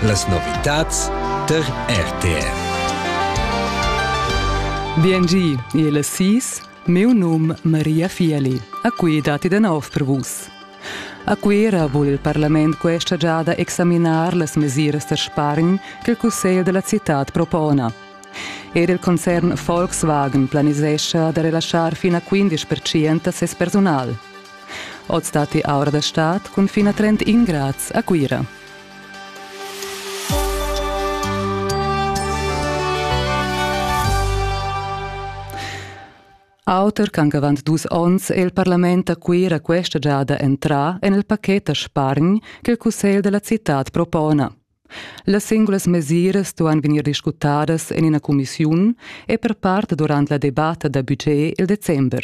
Las novitads tar RTR. Biengi, il sis, meu num Maria Fieli. A qui dati de nov per vus. A Cuera vul il parlament questa giada examinar las mesiras da spargn che il Cussegl della città propona. Ed il concern Volkswagen planisescha da relaschar fino a 15% a ses personal. Oz datti aura da stad cun fin a 30 grads a Cuira. Auter ch'anc avant dus onns è il parlament a Cuira questa giada entrà en il pacchet da spargn che il cussegl da la citad propona. Las singulas mesiras duan vegnir discutadas en ina cumissiun e per part durant la debatta da budget il december.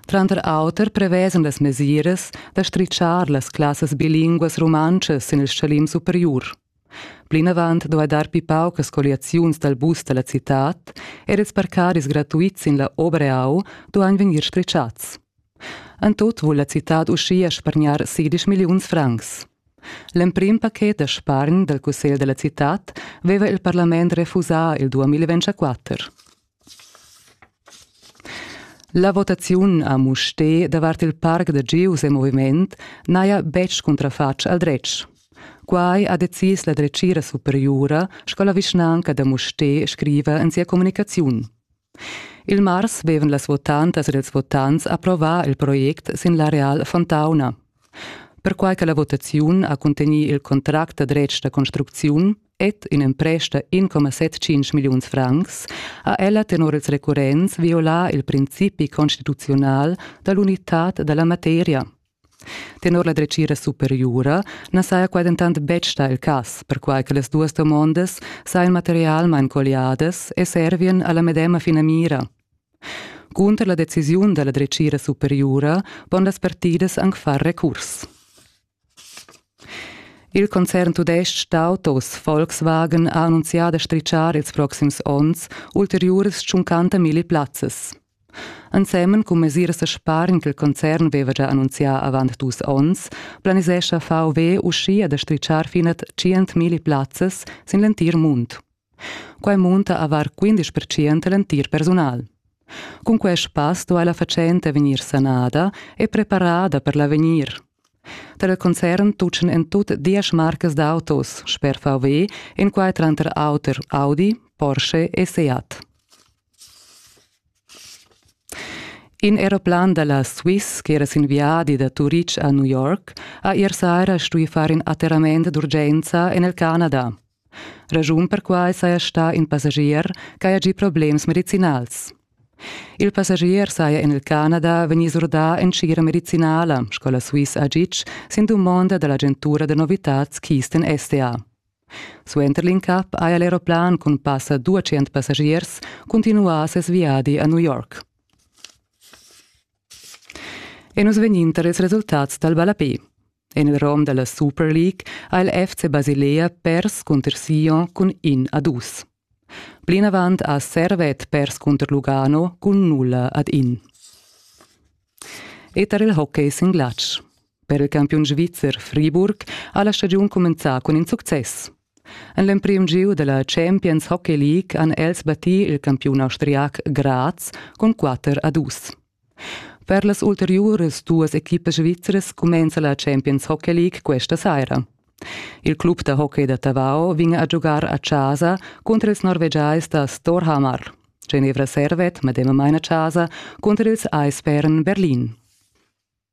Tranter auter prevesan las mesiras da stritschar las classas bilinguas rumantschas sin il stgalim superiur. Plinavant duai dar pli paucas colliaziuns dal bus da la citad er ils parcaris gratuits sin la Obreau duain vegnir stritschats. En tut vul la citad uschia spargnar sidisch milliuns francs. L'emprim pachet da spargn dal cussegl da la citad veva il parlament refusà il 2024. La votaziun a Mustér davart il parc da gieus e moviment n'haja betg cuntrafatg al dretg. Quai ha decis la dretgira superiura sco la vischnanca da Mustér scriva en sia communicaziun. Il mars vevan las votantas ed ils votants approvà il project sin l'areal Fontauna. Perquai che la votaziun ha cuntegnì il contract da dretg da construcziun, Ed in empresta 1,75 milliuns francs ha ella tenor ils recurrents violà il principi constituzional da l'unitad da la materia. Tenor la dretgira superiura na saja quai dentant betg stà il cas, perquai che las duas domondas sajan materialmain colliadas e servien a la medema finamira. Cunter la decisiun da la dretgira superiura pon las partidas anc far recurs. Il concern tudestg d'autos Volkswagen ha annunzià da stritschar ils proxims onns ulteriuras tschuncanta milli plazzas. Ensemen cun mesiras da spargn che il concern veva già annunzià avant dus onns, planisescha VW uschia da stritschar fina 100.000 plazzas sin l'entir mund. Quai munta avar quindesch percent l'entir persunal. Cun quest pass duai la fatschenta vegnir sanada e preparada per l'avegnir. Tar il concern tutgan en tut diesch marcas d'autos sper VW, in quai tranter auter Audi, Porsche e Seat. In aeroplan da la Swiss ch'era sin viadi da Turitg a New York ha ier saira stuì far in atterrament d'urgenza en il Canada. Raschun per quai saja stà in passagier ch'haja gì problems medicinals. Il passagier saja en il Canada vegnì surdà en tgira medicinala sco la Swiss a Gitg sin dumonda da l'agentura da novitads Keystone STA. Suenter l'incap haja l'aeroplan cun passa 200 passagiers cuntinuà ses viadi a New York. E nus vegnin tar ils resultats dal ballapé. En il rom da la Super League ha il FC Basilea pers cunter Sion cun in a dus. Plinavant ha Servet pers cunter Lugano cun nulla ad in. E tar il hockey sin glatsch. Per il campiun svizzer Friburg ha la stagiun cumenzà cun in success. En l'emprim giu della Champions Hockey League han els battì il campiun austriac Graz cun 4 a 2. Per las ulteriuras duas equipas svizras cumenza la Champions Hockey League questa saira. Il club da hockey da Tavau vegn a giugar a chasa cunter ils norvegiais da Storhamar. Genevra servet medemamain a chasa cunter ils Eisbären Berlin.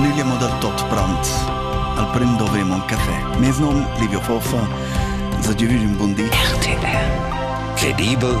Nüglia mo dal tot prant. Al prem dovremo un caffè. Mes nom Livio Foffa. Sa giovü un buon di. RTR. Credibel